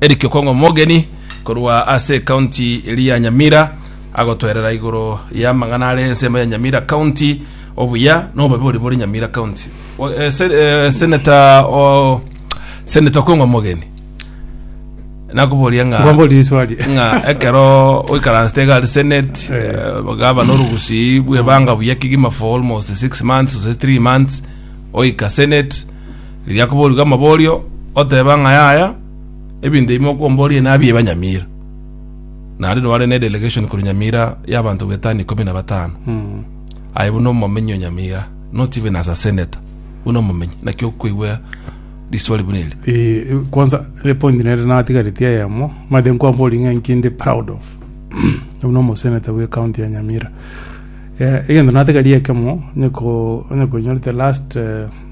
Eric Okongo Mogeni korwa ase ekaunti eri ya Nyamira agotwerera igoro y'amang'ana are ensemo ya Nyamira County, obuya na obobe bori bore Nyamira County. O- eh, se- eh, Senator o- Senator Okongo Mogeni nakoboria ng'a Ngombori riswali. ng'a ekero oikaransete iga ari senate Eh. eh, gaba norugusi bwebanga buya kigima for almost six months ose three months oika senate Riria akoboria amaborio, oteba ng'a yaya, ebinto ebi mokomboria nabi ebanyamira. Naende nobare ne delegation korwa nyamira y'abanto bwetano ikomi na batano. Aye buna omomenyi o nyamira, not even as a senator, buna omomenyi. Naki okoigwa riswali buna eri. Eh, kwanza re point nere natigaretie eyemo mate nkwambori ng'a inki ndi proud of buna omoseneta bwe county ya nyamira Eh, egento natigarie ekemo onye ko- onye koinyorete last eh,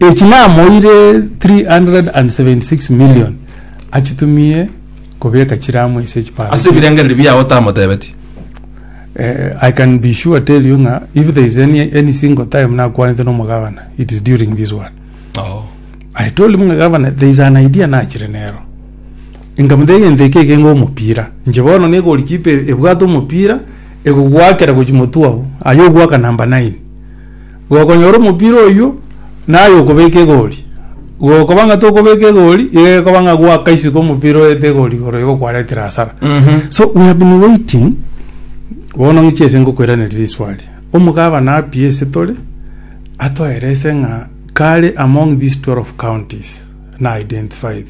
Echi namoire 376 million achitumie kobeka chiramu ase echipara Ase echi. ebirengererio biao otamotebetie. Eh, I can be sure tell you ng'a if there is any, any single time nakwanete na omogavana it is during this one. Oo. I told him ng'a gavana there is an idea nachire nero. Nkamotebia egento eke ekenge omopira. Inche bono ne goalkeeper e- ebwate omopira egogwakera gochia motwe abwo. Aye ogwaka number nine. Gokonyora omopira oyio naye okobeka egori, gokoba ng'a tokobeka egori, iga gekoba ng'a gwakaiseka omopira oete egori igoro igo kwaretire hasara. So we have been waiting, bono ng'iche ase ngokoiraneria riswali. Omogabana apiye ase tore, atoerese ng'a kare among these 12 counties na identified,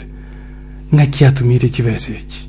ng'aki atumire chibesa echi?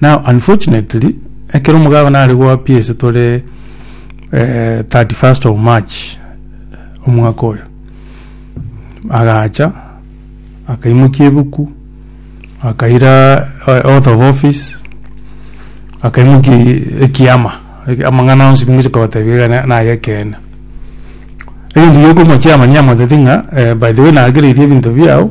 Now unfortunately ekero omogabane are goa pi ase tore eh, 31st of March omwaka oyo agacha akaimokia ebuku akaira eh, oath of office akaimokia ekiama Eki- amang'ana onsi bingochi kogotebia iga na- naye ekeene egento giokomochiama niamotebia ng'a eh, by the way nagereirie ebinto biao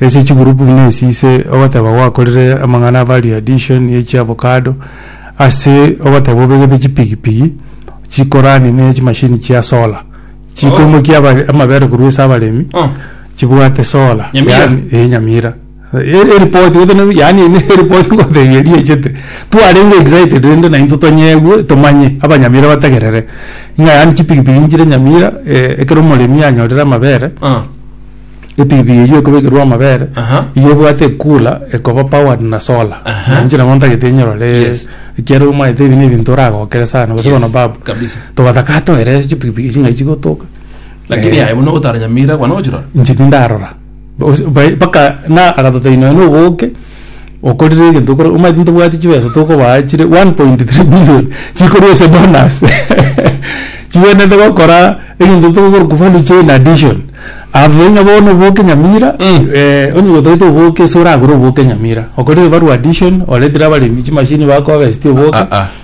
Ase chigroup buna esi ise ogoteba gwakorire amang'ana a value addition ye chiavocado ase ogoteba obegete chipigipigi chikorani ne chimashini chia solar chikoimokia abare- amabere korwa ase abaremi Oh. chibwate solar Nyamira. yaani eh, Nyamira E- eripoti gose ne- yaani ene eripoti ngotebi eria echete twarenge excited rende naintwe tonyeigwe tomanye abanyamira bategerere ng'a yaani chipigipigi nchire Nyamira eh, ekero omoremi anyorire amabere Oh. Epipiri eyio ekobekerwa amabere Aha. igo ebwate ekula ekoba powered na solar Aha. na inche nabo ntagete nyorore Yes. ekiaro omanyete ebi nebinto oragokere sana gose Yes, bono babu kabisa. togataka atoerese chipikipiki echi ng'ai chigotoka Lakini Eh, aye buna ogotaranyamira kwane ogochirora. inche tindarora Bos- bai- mpaka na agatotebia nonya noboke okorire egento okore omanyete ntobwati chibesa tokobaa chire one point three billion chikorwa ase bonus chigwenerete gokora egento tokorokwa value chain addition abwo ng'a bono oboke nyamira onye gotagete oboke ase oragure oboke nyamira okorire value addition oretire abaremi chimachine bakohavesia oboke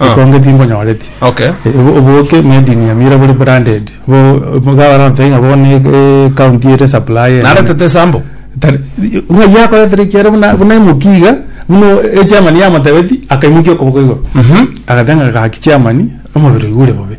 Ekonge tinkonyoreti. Okay. Ebo oboke made in Nyamira bori branded. Bo mugabana nte ng'a bono e county ere supply ene. Narete tesambo. Tari ng'a yakoretire kiere buna buna emoki iga buna e chairman yamotebeti akaimokia okoboko igoro. Agate ng'a gaki chairman omobere oigure bobe.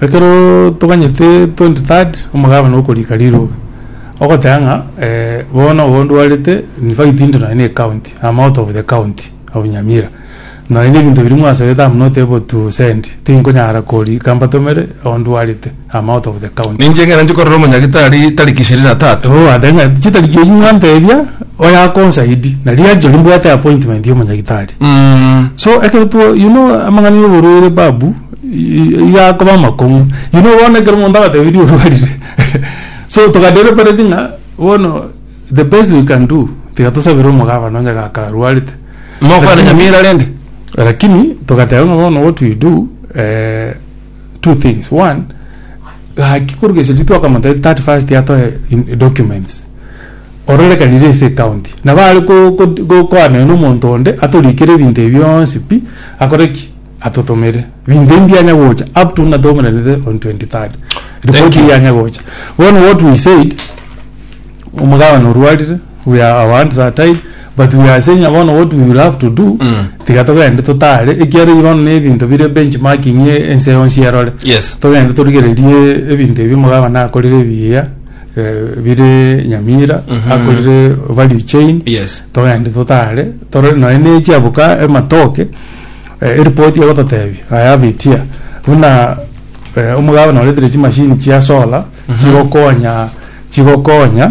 Ekeroo toganyete twenty third omogabana okorika rirobe, ogoteba ng'a bono igo ndwarete in fact intwe nonye na ecounty am out of the county of nyamira nonye na ebinto biria mwasabete am not able to send tinkonyara korika mbatomere igo ndwarete am out of the county. Ninche ekero nchia korora omonyagitari tariki ishirini na tatu. Igo ogoteba ng'a chitariki echio mwantebia. Oyo akonsaidi na riacho rimbwate appointment ya omonyagitari so ekero two you know amang'ana ya oborwaire babu i- iga akoba amakong'u you know bono ekero omonto agotebirie orwarire so toka deliberate ng'a bono the best we can do tiga tosabere omogabana onye iga akarwarete Mokwana Lakini- nyamira rende. lakini togateba ng'a bono what we do eh, two things one gaki korwa gechagi twakamotebia that first atoe in- documents ororekanire ase ekaunti na bare go- go- gokoanera na omonto onde atorikere ebinto ebi bionsi pi akore ki atotomere binto ebi mbianya gocha up to buna tomoranete on 23rd Thank ripoti you. eye yanya gocha bono what we said omogabana orwarire we are our hands are tied but we are saying bono what we will have to do Mm. tiga togende totare ekiaro eye bono nebinto bire benchmarking e- ense yonsi erore Yes. togende torigererie ebinto ebi omogabane akorire ebiya eh, bire nyamira Mhm. akorire value chain Yes. togende totare tore noe nechiaboka ematoke eh, eripoti egototebia i have it here buna eh, omogabane oretire chimashini chia solar chigokonya chigokonya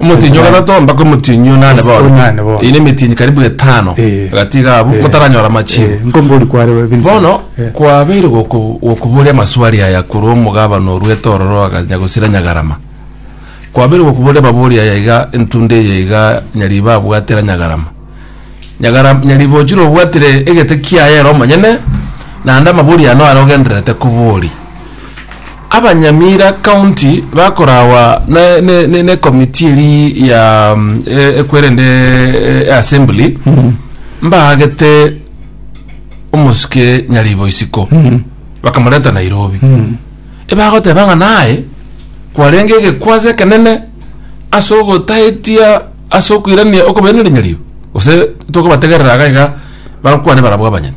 Omotienyi o gatato mpaka omotienyi o nane bono. Onane bono. Ine emetienyi karibu etano Eh. gatiga abwo Eh. motaranyora amachibo. Eh, nko mbori kware we Vincent. Bono Eh. kwabeire goko- gokoboria amaswali aya korwa omogabana orwa etororo aga Nyagosira Nyagarama. Kwabeire gokoboria amabori aya iga entunda eye iga Nyariba abwatera Nyagarama. Nyagara- Nyariba ochire obwatire egete kiaye ere omonyene, naende amabori aya naro ogendererete koboria. Abanyamira County bakorawa ne committee eri ya ekwerende assembly mbaagete omosike nyaribo isiko bakamoreta Nairobi ebagoteba ng'a naye kwarenge egekwasi ekenene ase ogotaetia ase okoirania okobenereri nyaribo gose tokobategerera iga iga bakwane barabwo abanyene.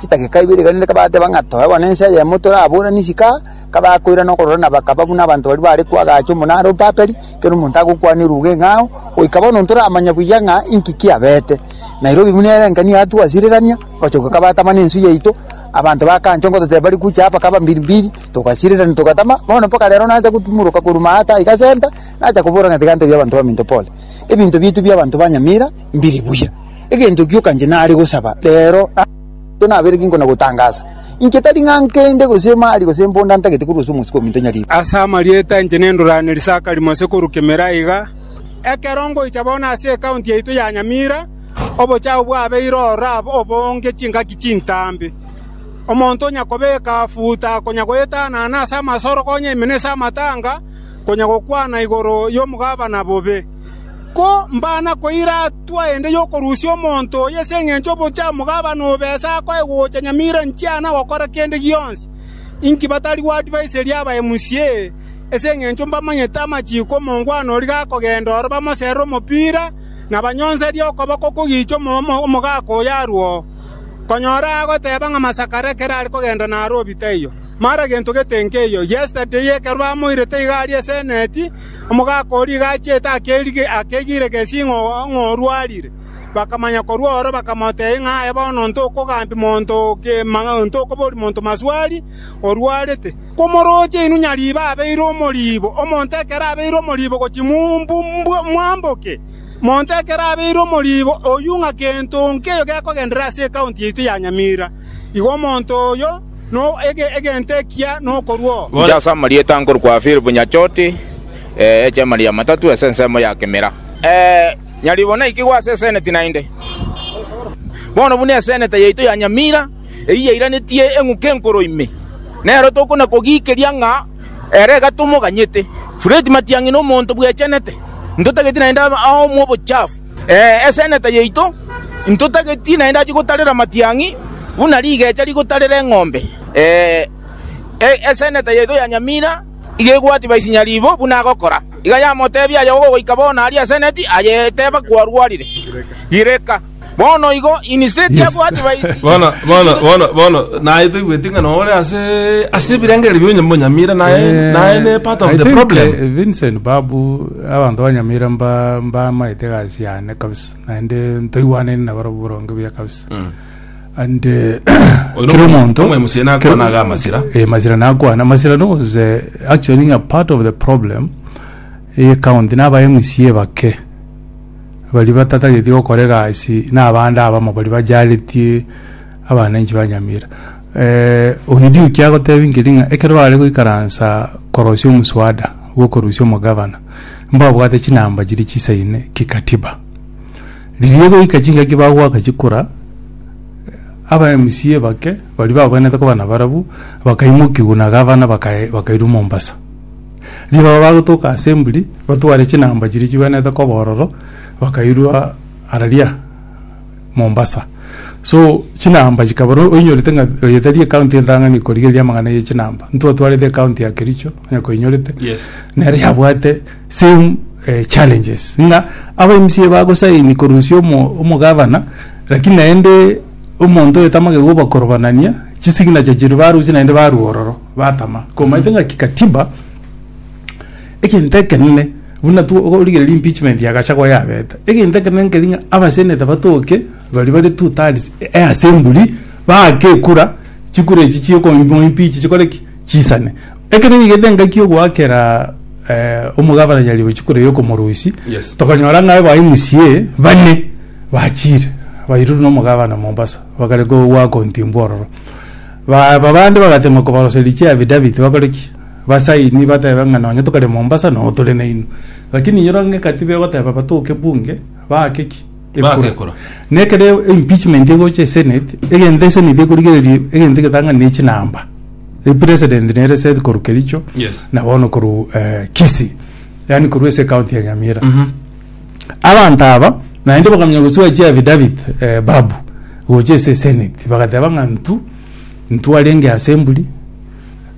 Chidakika ibere iga rende kabateba ng'a toe bono ense eyemo toraburane isiko aa, kabakoirana okororana bakaba buna abanto baria bare kwo agacha omonara o Babeli, ekero omonto agokwana eruga eng'ao, goika bono ntoramanya buya ng'a inki kiabete. Nairobi buna ere engencho yatwo gwasirerania, gocha goika batama nensu yaito, abanto bakanchwa ngototeba bari gocha aa bakaba mbiri mbiri, togasirerania togatama, bono mpaka rero nacha gotumoroka korwa maa ata iga center, nacha kobora ng'a tiga ntebie abanto baminto pole. Ebinto biaito bia abanto ba Nyamira. mbiri buya. Egento gioka inche nare gosaba reero ase intwe nabere ginko na gotangaasa. Inche tari ng'a nkende, gose emari, gose emponda ntagete korwa ase omosike ominto nyariire. Ase amarieta inche nendoraneri sakari mose korwa kemera iga. Ekero ngoicha bono ase ekaunti yaito ya Nyamira, obochafu bwabeire ororo aba obonge chingaki chintambe. Omonto onya kobeka futa, konya goetanana ase amasoro konya emenese amatanga, konya gokwana igoro yomogabana bobe. Ko mbana koira hatua ende y'okorusia omonto oyo ase engencho y'obochamo gabana obe ase akoe gocha nyamira nchiana gokora kende gionsi? Inki batari gwadvaisa eria abae musee? Ase engencho mbamanyete amachiko omongwana oria gakogenda oro bamoserere omopira, na banyonserie okoboko kogicha omogaka oyo arwo, konyora agoteba ng'a masakare ekero are kogenda naro obitaiyo. Mara gento gete nkeiyo. Yesterday ekero bamoirete iga aria ase eneti, Omogaka oria iga achete akerige, akegire gesi ng'o orwarire. Bakamanya korwa oro, bakamotebia ng'a aye bono onto okogambia monto kegima, onto okoboria monto maswali, orwarete. Komoroche inwe nyariiba abeire omoriibo, omonto ekero abeire omoriibo gochia mwamboke, monto ekero abeire omoriibo oyio ng'a gento nkeyo gekogenderera ase ekaunti yaito ya Nyamira. Igo omonto oyo, egento ekiya nokorua oo. Inche ase amarieta nkorokwa Philip Nyachoti, echemari ya Matatu ase ensemo ya Kimira. Nyaribo naikigwe ase eseneti naende. Bono buna eseneta yaito ya Nyamira eyio yairanetie eng'uki enkoro ime, nero tokona-kogikeria ng'a ere egatomoganyete. Fred Matiang'i nomonto bwechenete, ntotageti naende aomwe obochafu. Ee, eseneta yaito intotageti naende achie gotarera amatiang'i, buna rigecha rigotarera eng'ombe. Ee, eseneta yaito ya Nyamira iga egwatie Baisinyaribo buna agokora. Iga yamoteebia, Aye ogoika bono aria eseneti, aye teba kwarwarire. Gireka. Bono igo Iniseti abwatie Baisinyaribo. bono bono bono bono naye toigweti ng'a nore ase ase ebirengererio bia Nyamira naye naye ne part of the problem. Vincent Babu Abanto ba Nyamira mba- mbamaete egasi yane kabisa, naende ntoigwanaine nabarabwo boronge buya kabisa. Ande Oyo kera nomo- omonto omoemusie nakwana iga amasira. Eh, masira nakwana masira was eh, actually ng'a part of the problem eye county na aba mca bake bari batatageti gokora egasi na abande abamo bari bajaretie abananchi ba nyamira Eh, Ogidiuki agotebia nkeri ng'a ekero bare goikaransa korosia omoswada bw'okorusia omogavana, mbabwate chinamba chiria chisaine kikatiba. Riria goika chingaki bagoaka chikura, eh, aba MCA bake baria babwenerete koba nabarabwo bakaimokigwa na gavana bakae- bakairwa Mombasa. Riria baba bagotoka assembly, batware chinamba chiria chigwenerete koba ororo, bakairwa araria Mombasa. So chinamba chikaba no- oinyorete ng'a oyo tari ekaunti entang'ani korigereria amang'ana ye chinamba. Ntotwarete ekaunti ya Kericho, onye koinyorete. Yes. Nere yabwate same eh, challenges. Ng'a aba MCA bagosaini korusia omo- omogavana, lakini naende omonto oyo tamagete gobakorobanania, chisignature chiria barusia naende barwa ororo, batama. Komaete ng'a kikatiba, Egento ekenene, buna tworigereria impeachment ya Gachagua yabete, egento ekenene nkeri ng'a abaseneta batoke baria bare two thirds easemburi baake ekura, chikura echi chia okomoimpeach chikore ki? Chisane. Ekero yaigete engaki ogoakera eh, omogabana Nyaribo chikura eyo okomorusia, Yes. tokanyora ng'a aba MCA bane bachire bairure na omogabana Mombasa bagare kowakontimbwa ororo. Ba- babande bagatemwa kobaroseria chiaffidavit bakore ki? Abasaini batebe ng'a nonye tokare Mombasa noo tore nainwe. Lakini inyora ong'eka tibe ogoteba batoke bunge baake ki? Baake ekura. Nekere impeachment egocha esenate, egento esenate ekorigereria egento egetang'ani ne chinamba. Epresident nere Seth korwa Kericho Yes. na bono korwa eh, Kisii. Yaani korwa ase county ya Nyamira. Abanto aba naende bakamenya gosibwa chiaffidavit eh, Babu gocha ase esenate bagateba ng'a ntu ntu arenge ase emburi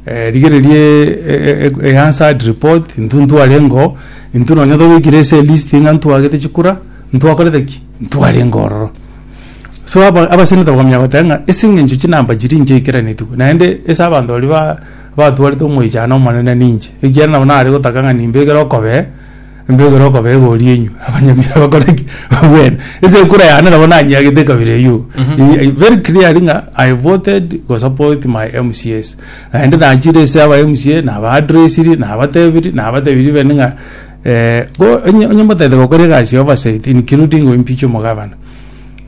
Rigereria eAnswered Report, Intwe ntwarenge oo, intwe nonya togoikire ase elist ng'a ntwagete chikura, ntwakorete ki? Ntwarenge ororo. So aba- abaseneta bakamanya goteba ng'a ase eng'encho chinamba chiria inche eikeraneti, naende ase abanto baria ba- batwarete omoichano omonene ninche, ekiagera nabo nare gotaka ng'a nimbekere okobee. Mbegure okobega oria inywe abanyamira abakore ki? Babwene. Ase ekura yane nabo nanyiagete ekabira eyio. I- Very clearly ng'a I voted go support my MCAs. Naende nachire ase aba MCA naba addressiri nabatebiri nabatebirie bene ng'a eh, go- onye onye motagete gokora egasi ya oversight including go impeach omogavana,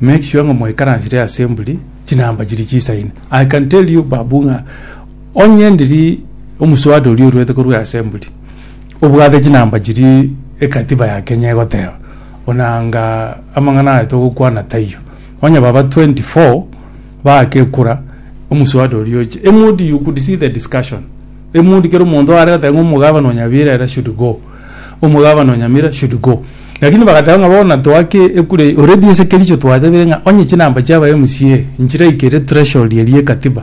make sure ng'a mwaikaransire assembly chinamba chiria chisaine. I can tell you Babu ng'a onye ndiri omoswada oria oruete korwa assembly, Obwate chinamba chiria egatiba ya Kenya egoteba, buna anga amang'ana aya togokwana taiyo. Onye baba 24 baake kura, omuswada oria oche. Eng'ondi you could see the discussion. Eng'ondi kera omonto are goteba ng'a omogabana o Nyabira ere should go. Omogabana o Nyamira should go. Lakini bagateba ng'a bono toake ekura eye. Already ase Kericho twatebire ng'a onye chinamba chia aba MCA nchiraikere threshold eria egatiba.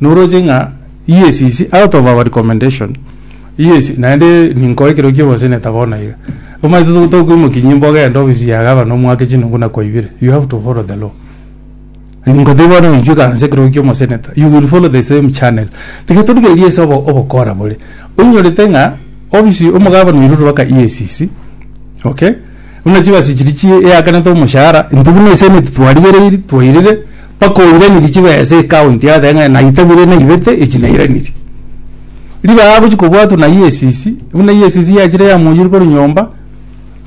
noroche ng'a yes is out of our recommendation yes naende ninkoe ekero kia oboseneta bono iga omanyete to- tokoimokia nyimbo ogende ofisi ya gavana omwake chinungu nakwaibire you have to follow the law ningotebia bono intwe ekansa ekero okia omoseneta you will follow the same channel tiga torigereria ase obo- obokora bore oinyorete ng'a ofisi omogabana oirure mpaka EACC okay. Buna chibasi chiria chiakanete omoshahara, intwe buna eseneti twarigereiri, twairire, mpaka oiranirie chibesa ecounty yao taiga naitabire naibete echi nairanirie. Ribe aya agochi kobwatwa na EACC, buna EACC yachire yamoiyire korwa nyomba,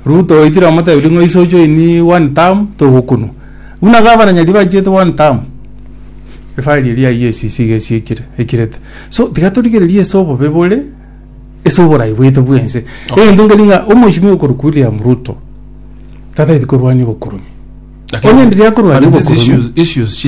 Ruto oitire omotebirie ng'a oise ojoini one term togokunwa. Buna gavana nyariri bachiete one term, efile eria ya EACC iga esiekire, ekirete. So tiga torigererie ase obobe bore. ase oborai bwaito bwense Okay. egento nkeri ng'a omweshimiwa okorokwa william ruto tatagete korwania obokoroni Lakini- Onye ndiria korwania lakini these obokoroni- issues- issues